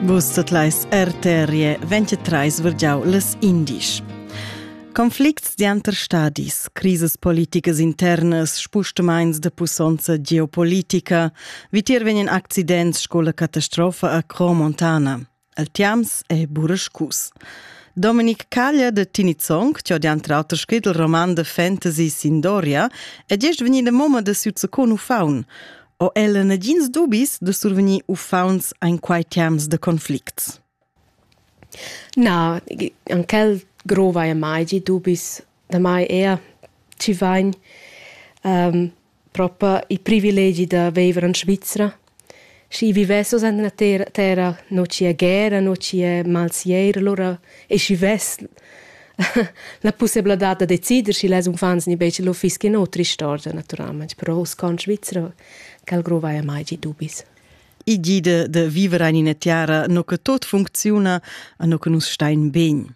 Vus tot leis RTRE 23 virgiau les indisch. Conflicts dianter stadis, crises politicas internas, spustemains de pussonza geopolitica, vitier vegnen accidents sco la catastrofa a Cromontana. El tiams è burascus. Dominic Caglia de Tinizong, che dianter auter scrit il roman de fantasy Sindoria, è gest vegnida moma de Suzzecon ufaun. o ella nagins dubis de survegnir uffaunts ein quai terms de conflicts? Na, an quel grova e mai gi dubis da mai ea ci vain um, propa i privilegi da viver in Svizzera. Schi vivesso en la terra, terra no ci è guerra, no ci è malsier, allora e schi ves la pussebladad da decider schi las unfants ni beice lo fischi no tristorgia naturalmente però us con Svizzera cal grovaia mai gi dubis i gide de vivere in ina tiara no che tot funcziona a no che nus stein ben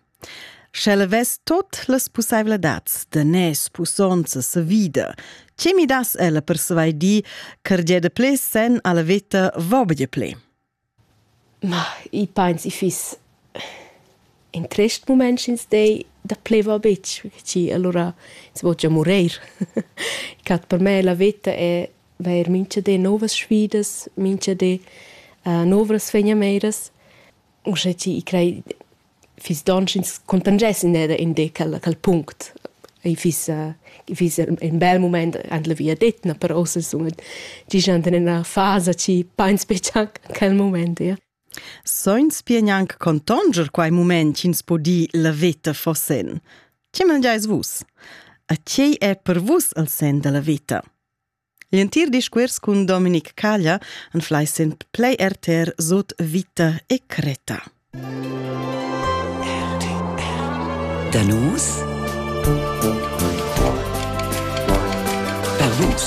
Schelle ves tot las pussaivladats de nes, pussonza, sa vida. Ce mi das ella per svai di, car de ple sen alla veta vobge ple? Ma i pains i fiss in trist mumaint sch'ins dei da pleva betg, schi alura ins vo gia murer. I cat per me la veta è vair mincha di nouvas sfidas, mincha di novras fegnameiras. Uschè chi i crei fiss donn sch'ins contangess in eda in de quel, quel punct. I fiss, i fiss in bel moment an la via detna, però se sun gigiant in ena fasa ci pains betg anc quel moment, ja. Soins pia gnanc contonger quai moment ch'ins po dir la veta fossen. Ti mangiais vus. A tgei è per vus al sen da la veta? L'entir discuors cun Dominic Caglia anflai sen plei RTR sut vita e creta. Danus Per vus